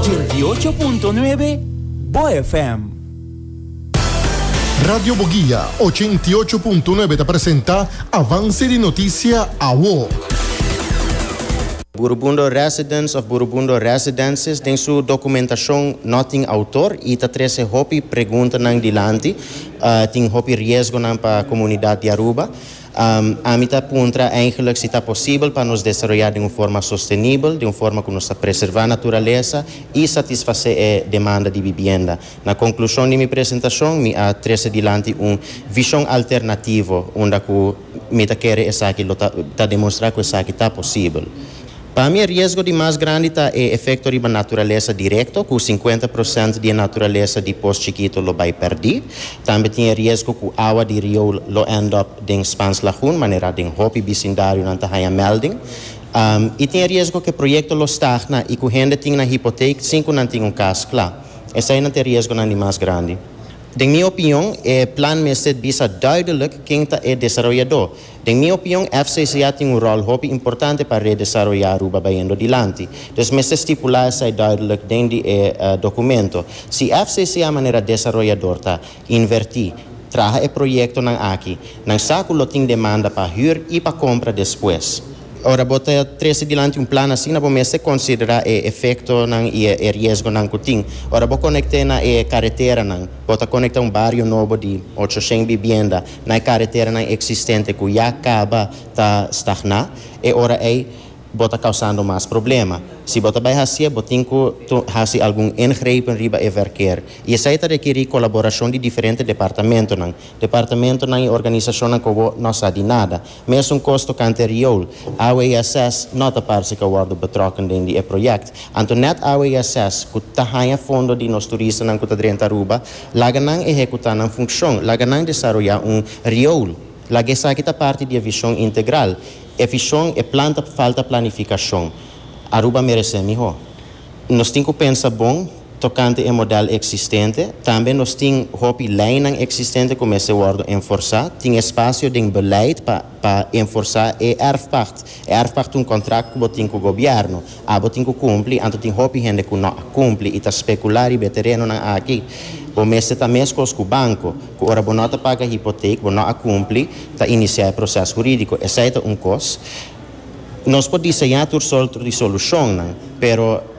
Dieciocho punto nuebe, Bo FM. Radio Boguia, ochenta i ocho punto nuebe ta presenta Avance di Noticia Awo. Burubundo Residence of Burubundo Residences den su documentacion no tin autor y ta trece hopi preguntanan dilanti. Tin hopi riesgonan pa comunidad di Aruba. Ami ta puntra eigenlik si ta posibel pa nos desaroyá den un forma sostenibel, den un forma ku nos ta preservá naturalesa i satisfasé e demanda di bibienda. Na konklushon di mi presentashon mi a trese dilanti un vishon alternativo unda ku mi ta kere esaki lo ta ta demonstrá ku esaki ta posibel. Pa mi e riesgo di mas grandi ta e efekto riba naturalesa direkto, ku sinkuenta prosènt di e naturalesa di pos chikito lo bai pèrdí. Tambe tin e riesgo ku awa di rioul lo end up den Spans Lagoon, manera den hopi bisindarionan ta haña mèlding. I tin e riesgo ku e proyekto lo stagna i ku hende tin nan hipoteek sin ku nan tin un kas kla. Eseinan ta e riesgonan di mas grandi. Den mi opinion, e plan mester bisa duidelik ken ta e desaroyadó. Den mi opion FCCA tin un ròl hopi importante pa redesaroyá Aruba bayendo dilanti. Dus mester stipulá esei duidelijk den di e dokumento. Si FCCA manera desaroyador ta invertí, traha e proyektonan aki, nan sa ku lo tin demanda pa hür i pa kompra despues. Ora bo ta trese dilanti un plan asina bo mester konsiderá e efektonan i e riesgonan ku tin. Ora bo konekt'é na e kareteranan, bo ta konektá un bario nobo di ocho shen bibienda, na e kareteranan eksistente ku ya kaba ta stagná, e ora ei bo ta kausando mas problema. Si bo ta bai hasié, bo tin ku hasi algun ingrepen riba e vèrker. I esei ta rekerí kolaborashon di diferente departamentonan, departamentonan i organisashonnan ku bo no sa di nada. Mesun kos tokante riool, awe ya ses no ta parse ka worde betrokken den di e project. Anto net awe ya ses ku ta haña fondo di nos turistanan ku ta drenta Aruba, laga nan ehekutá nan funkshon, laga nan desaroyá un riool, laga esaki ta parti di e vishon integral. E vishon, e plan ta falta planifikashon. Aruba meresé mihó. Nos tin ku pensa bon. Tokante e modèl eksistente, tambe nos tin hopi leinan eksistente ku mester wòrdu enforsá. Tin espasio den beleid pa pa enforsá e èrfpakt. E èrfpakt un kontrakt ku bo tin ku gobièrnu. Abo tin ku kumpli, anto tin hopi hende ku no a kumpli i ta spekulá riba e terenonan aki. Bo mester ta meskos ku banko, ku ora bo no ta paga hipotek, bo no a kumpli, ta inisiá e proses hurídiko. Esei ta un kos. Nos por diseñá tur sòrt risolúshonnan, pero.